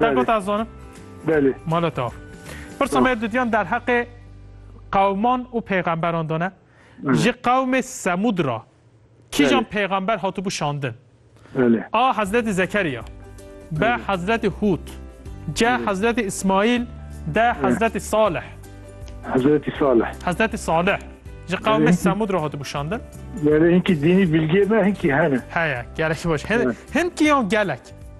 Belê. Dergota zanim? Belê. Mala te. Pirsa me didiyan derheqê qewman û pêxemberan de ne. Ji qewmê Semûd ra kîjan pêxember hatibû şandin? A. Hezretî Zekeriya B. Hezretî Hûd C. Hezretî Îsmaîl D. Hezretî Salih Hezretî Salih Hezretî Salih ji qewmê Semûd ra hatibû şandin. Gelê hinkî dînî bilgê me hinkî hene. Heye, gelekî baş. Hin, hin kî yan gelek.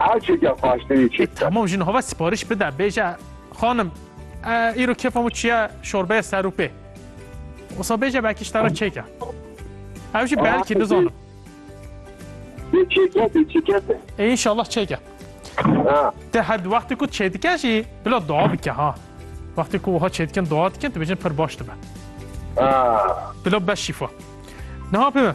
Erçeke xwaştirî çi bike. Tamam jin hova sipariş bide bêje xanim îro kêfa min çiye şorbeya serûpê. Wisa bêje belkî ji te re çêke. Ew jî belkî nizanim. Bê çêke bê çêke. Ê înşallah çêke. Te her di wextê ku çê dike jî bila dua bike ha. Wextê ku wiha çê dikin dua dikin dibêjin pir baş dibe. Bila beş şîfa. Niha pê min.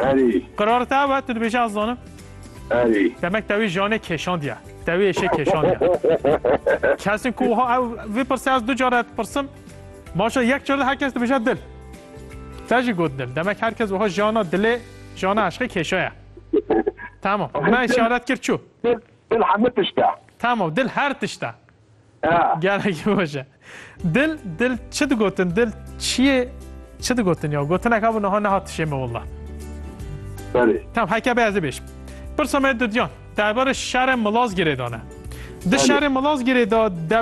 Erî. Qirare te ew e, tu dibêjî ez zanim. Erî. Demek tewî janê kêşandiye. Tewî êşê kêşandiye. Kesên ku wiha ew vê pirsê ez du care dipirsim. Maşa yek care her kes dibêje dil. Te jî got dil. Demek her kes wiha jana dilê, jana eşqê kêşaye. Tamam. Me îşaret kir çû. Dil hemû tişt e. Tamam, dil her tişt e. Gelekî baş e. Dil, dil çi digotin? Dil çiyê çi digotin ya? Gotineka bû niha nehat dişê min willa. Berê. Tam heke bê ez ê bêjim. Pirsa me Dudyan, derbarê şerê Milazgirê de ne. Di şerê Milazgirê de